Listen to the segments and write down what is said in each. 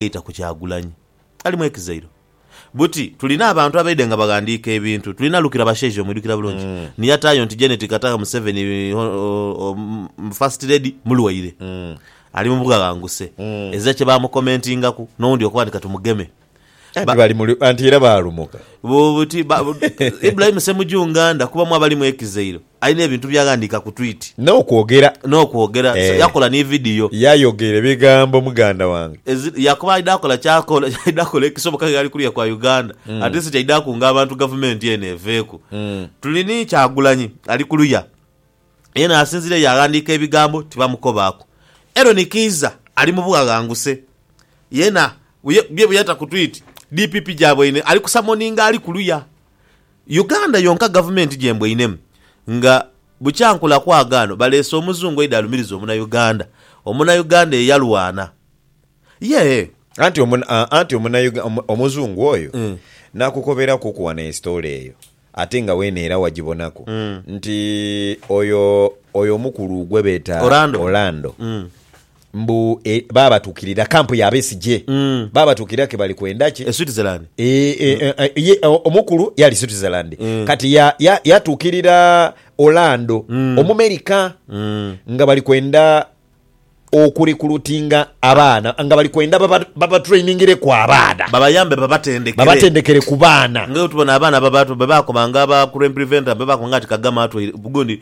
eita ku Kyagulanyi. Alimu ekizairo. Buti tulina abantu abaidhe nga baghandiika ebintu. Tulina Lukira Bashaija omwidhukira bulungi ni yataayo nti Janet Kataha Museveni, Hon. First Lady, mulwaire. Ali mu bughaghanguse. Ezira kye baamukomentingaku, n'owundi okuba nti ka tumugeme. Anti bali mu lu, anti era baalumuka. Bu, buti, ba, bu, Ibrahim Ssemujju Nganda kubamu abalimu ekizairo. Alina ebintu by'aghandiika ku twiti. N'okwogera. N'okwogera. So yakola ni vidiyo. Yayogera ebigambo muganda wange. Ezi, yakoba aidha kola ky'akola, aidha kola ekisoboka nga ali kuliya kwa Uganda, at least kyaidha kunga abantu gavumenti eno eveeku. Tuli ni Kyagulanyi ali kuluya, yena asinzireyo yaaghandiika ebigambo tibamukobaaku. Eron Kiiza ali mu bughaghanguse, yena bye bweyata ku twiti, DPP gyabaine ali kusamoninga ali kuluya. Uganda yonka gavumenti gyembwainemu nga bukya nkula kwagaano baleese omuzungu aidha alumiriza omunauganda. Omunauganda eyalwana ye. Anti anti omunauganda omuzungu oyo nakukoberakuku wano estory eyo ate nga weena era wagibonaku nti oyo oyo omukulu gwebeeta Orlando Mbu e, baabatuukirira kampu ya Besigye. Baabatuukirira ke bali kwenda ki? E Switzerland. Ee, e, e, e, ye, o- omukulu yali Switzerland. Kati ya, ya, yatuukirira Orlando, Omumerika, nga bali kwenda okurekulutinga abaana, nga bali kwenda baba- babatrainingireku abaana, Babayambe babatendekere. babatendekere ku baana. Nga bwetubona abaana baba bwe baakobanga aba crime preventer bwe baakobanga ati Kagame atweire gundi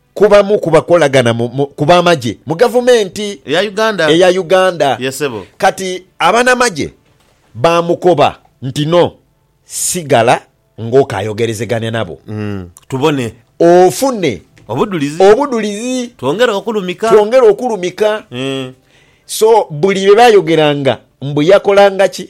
ku bamu ku bakolagana ku b'amagye mu gavumenti eya Uganda. Kati abanamagye baamukoba nti no, sigala ng'okaayogerezegania nabo tubone ofune obudhulizi twongere okulumika. So buli lwe baayogeranga mbu yakolanga ki?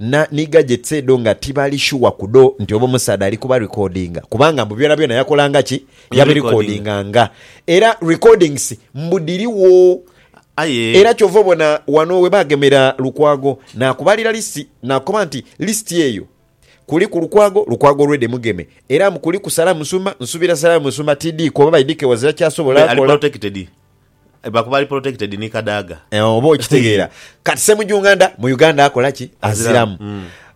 na ni gadgets edho nga tibali sure ku dho nti oba omusaadha ali kuba recordinga kubanga mbu byonabyona yakolanga ki? Yabi recordinganga. Era recordings mbu dhirigho. Aye. Era kyova obona wano we bagemera Lukwago nakubalira list nakukoba nti list eyo kuliku Lukwago, Lukwago already mugeme era mbu kuliku Sarah Musumba, nsubira Sarah Musumba TD kuba by DK wazira kyasobola kola. Aye ali protected. Bakuba ali protected ni Kadaga. Oba okitegeera. Kati Ssemujunganda mu Uganda akola ki? Aziramu.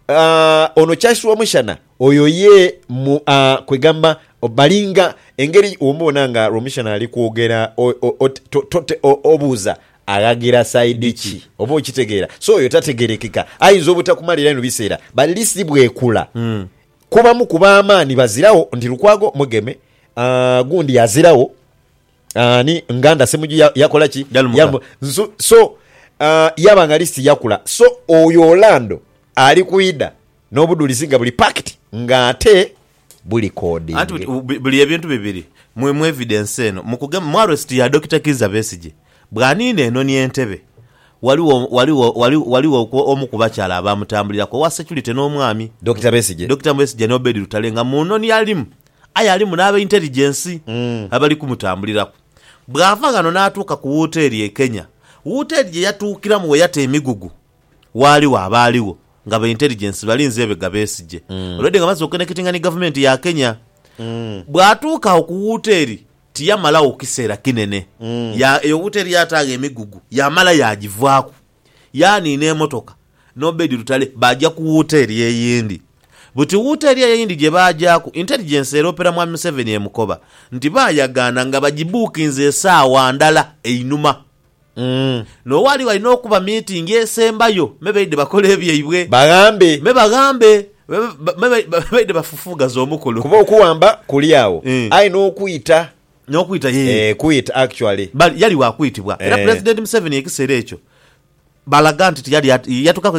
Aah, ono Charles Rwomushana oyo ye mu, aah, kwegamba balinga engeri womubona nga Rwomushana ali kwogera o, o, ot, to, to, to, o, obuuza aghagira side ki? Oba okitegeera. So oyo tategerekeka. Ayinza obutakumalira inho biseera but list bwekula kubamu ku b'amaani baziragho nti Lukwago mugeme, aah, gundi aziragho, Ani nganda semuju yakola ki yalumuka nsu so uh, yaba nga list yakula so oyo Orlando ali kwida nobudulizi nga buli packed nga ate buli coding anti buli ebintu bibiri mu mu evidence eno mukugema mu arrest ya Dokita Kiiza Besigye bwanina eno ni Entebbe waliwo waliwo waliwo waliwo omu kubakyala abamutambulirako owa security nomwami Dokita Besigye Dokita Besigye ne Obedi Lutale nga mu noni alimu Aye alimu n'abeinteligensi abali kumutambuliraku. Bw'ava ghano n'atuuka ku wooteri e Kenya, wooteri gye yatuukiramu we yata emigugu, waaliwo abaaligho nga beinteligensi balinze ebega Besigye olwedde nga amaze okukenekitinga ni Gavumenti ya Kenya. Bw'atuuka agho ku wooteri tiyamalagho kiseera kinene. Eyo wooteri yaataagho emigugu yaamala yaagivaaku. yaani n'emotoka n'Obedi Lutale baaja ku wooteri eyindi. Buti wooteri eyo eyindi gye baajaaku, Intelligence eroopera Mwami Museveni e Mukoba nti baayagaana nga bagibuukinze esaawa ndala einhuma n'owaali walina okuba miitingi esembayo me baidhe bakole ebyaibwe, Baghambe. me baghambe, me baidhe bafufuughaze omukolo. Kuba okuwamba kuli agho, aye n'okwita N'okwita, yee. Eh, kwita actually. Bali, yali wa kwitibwa. Era Eh. Pulezidenti Museveni ekisera ekyo balaga nti tiyali at, yatukaku